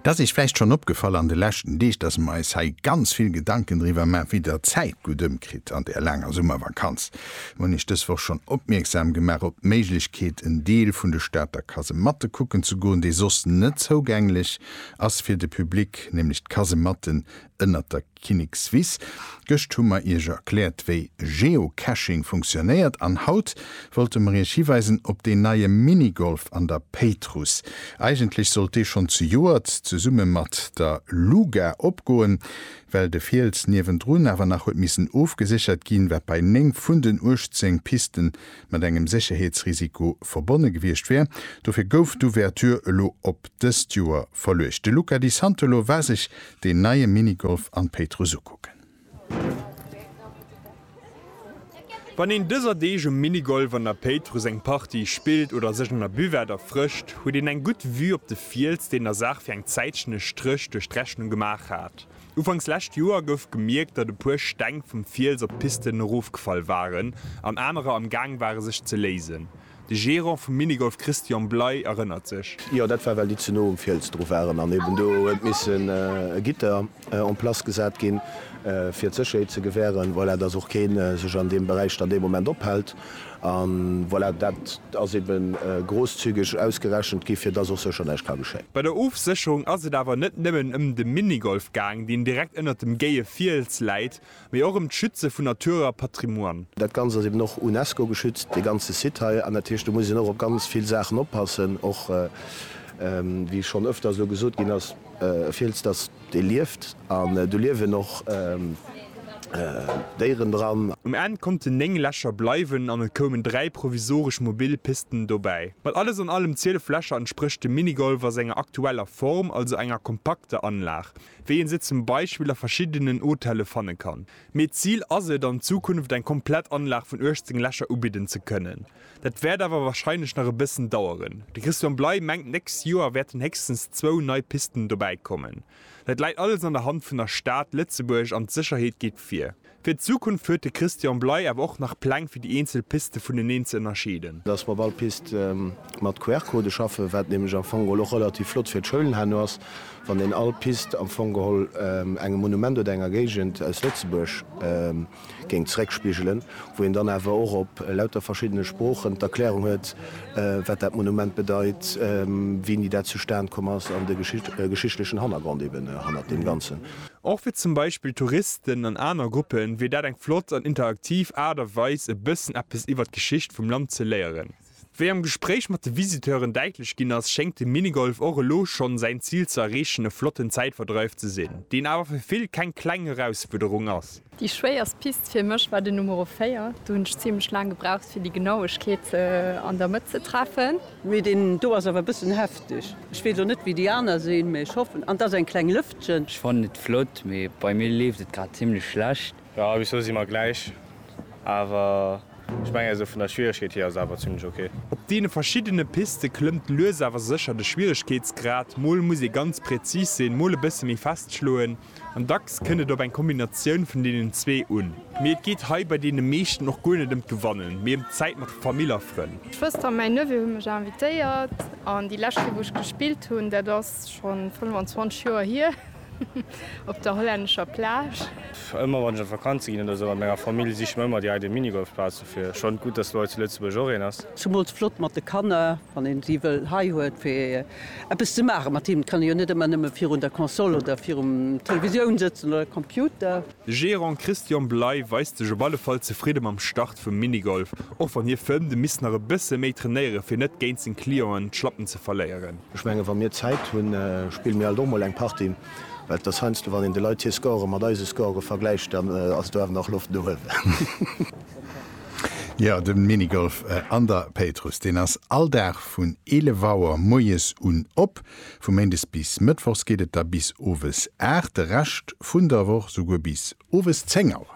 Et ass iech vläicht schonn opgefall an de leschten Deeg, dass mer eis hei ganz vill Gedanken driwwer maachen, wéi der d'Zäit gutt ëmkritt an där laanger Summervakanz. Mer hunn iech dës Woch schonn opmierksam gemaach op d'Méiglechkeet, en Deel vun de Stater Kasematte kucken ze goen, déi soss net zougänglech ass fir de Public, nämlech d'Kasematten Ënnert der Kinnikswiss. Gëscht hu mer Iech erkläert, wéi Geocaching funktionéiert an haut wollte mer Iech hiweisen op deen neie Minigolf an der Péitruss. Eigentlech sollt dee schonn zejoert zesumme mat der LUGA opgoen, well de Fiels niewendrun awer nach huet missen ofgeséchert ginn, wat bei 9 vun den 18 Piste mat engem Sécherheetsrisiko verbonne gewiescht wär. Dofir gouf d'Ouverture elo op dëst Joer verluecht. De Luca Di Santolo war sech deen neie Minigolf an d'Péitruss ukucken. Wann een dëser Deeg um Minigolf an der Péitruss eng Partie spillt oder sech an der Buvette erfrëscht, huet een eng gutt Vue op de Fiels, deen der Saach fir eng Zäitchen e Stréch duerch d'Rechnung gemaach hat. Ufanks lescht Joer gouf gemierkt, datt e puer Steng vum Fiels op d'Pisten erofgefall waren an anerer am Gaang ware sech ze léisen. De Gerant vum Minigolf Christian Bley erënnert sech. Jo, dat war well déi ze no um Fiels dru waren an eben do huet missen e Gitter en place gesat ginn, fir d'Sécherheet ze gewähren. Voilà, dass och kee sech an deem Beräich dann dee Moment ophält. An voilà, dat ass ebe grosszügeg ausgerechent gi fir dass och sécher näischt ka geschéien. Bei der Ofsécherung ass et awer net nëmmen ëm de Minigolf gaang, deen direkt ënnert dem géie Fiels läit, mee och ëm d'Schütze vun Natur a Patrimoine. Dat Ganzt ass eben och UNESCO geschützt, dee ganze Site hei, an dat heescht, do muss een och op ganz vill Saachen oppassen, och wéi schonn ëfters elo gesot ginn ass, e Fiels, dass dee lieft an do liewen och Déieren dran. Um Enn konnten 9 Lächer bleiwen an et koumen 3 provisoresch mobil Pisten dobäi. Mat alles an allem 12 Lächer entsprécht de Minigolf a senger aktueller Form also enger kompakter Anlag, wéi een se zum Beispill a verschiddenen Hotelle fanne kann. Mee d'Zil ass et, an Zukunft eng komplett Anlag vun 18 Lächer ubidden ze kënnen. Dat wäert awer warscheinlech nach e bëssen daueren. De Christian Bley mengt, d'nächst Joer wäerten héchstens zwou nei Pisten dobäikommen. Dat läit alles an der Hand vun der Stad Lëtzebuerg an d'Sécherheet geet vir. Fir d'Zukunft huet de Christian Bley awer och nach Pläng fir déi eenzel Piste vuneneen ze ënnerscheeden. Dass mer op all Pist mat QR-Codë schaffen, wat nämlech am Fong geholl och relativ flott fir d'Schoulen herno ass, wann een all Pist am Fong geholl engem Monument oder enger Géigend aus Lëtzebuerg géing zeréckspigelen, wou een dann awer och op lauter verschiddene Sproochen d'Erklärung huet, wat dat Monument bedeit, wéini dat zustan komm ass an de geschichtlechen Hannergrond eeben hannert deem Ganzen. Och fir zum Beispill Touristen an aner Gruppe wier dat eng flott an interaktiv Aart a Weis e bëssen eppes iwwer d'Geschicht vum Land ze léieren. Wéi am Gespréich mat de Visiteuren däitlech ginn ass, schéngt de Minigolf och elo schonn säin Zil ze erreechen, e flotten Zäitverdreif ze sinn, deen awer fir vill keng kleng Erausfuerderung ass. Déi schwéierst Pist fir mech war den Numero 4, do hunn ech zimlech laang gebraucht fir déi Genauegkeet an der Mëtt ze treffen. Mee deen do ass awer e bëssen hefteg. Ech weess och net wéi déi aner sinn, mee ech hoffen, an dass eng kleng Lëftchen. Ech fannen et flott, mee bei mir leeft et grad zimlech schlecht. Jo bis lo si mer gläich, awer ech mengen esou vun der Schwieregkeet hier ass et awer zimlech ok. Op deene verschiddene Piste klëmmt lues awer sécher de Schwieregkeetsgrad, mol muss ee ganz präzis sinn, mol e bësse méi fest schloen. An dacks kënnt et op eng Kombinatioun vun deenen zwee un. Mee et geet hei bei deene meeschten och guer net ëm d'Gewannen, mee ëm d'Zäit mat Famill a Frënn. D'Schwëster a mäi Neveu hu mech invitéiert an déi lescht Kéier wou ech gespillt hunn, dat ass schonn 25 Joer hier, op der hollännescher Plage. Ëmmer wann ech op Vakanze ginn oder sou mat menger Famill, siche mer ëmmer direkt e Minigolfplatz. Fir schonn gutt, dass lo hei zu Lëtzebuerg och een ass. Zumools flott mat de Kanner, wann een si wëll hei huet fir eppes ze maachen mat hinnen. Et kann een jo net ëmmer nëmmen virun der Console oder virum Televisioun sëtzen oder Computer. De Gerant Christian Bley weist sech op alle Fall zefridde mam Start vum Minigolf, och wann hie fënnt, e misst nach e bësse méi trainéieren, fir net géint seng Clienten d'Schlappen ze verléieren. Ech mengen, wa mir Zäit hunn, spille mir alt och mol eng Partie. Well et ass heiansdo, wann een de Leit hir Score mat eise Score vergläicht, dann ass do awer nach Loft no uewen. Jo, de Minigolf an der Péitruss, deen ass all Dag vun 11 Auer moies un op. Vu méindes bis mëttwochs geet et da bis owes 8, de Rescht vun der Woch souguer bis owes 10 Auer.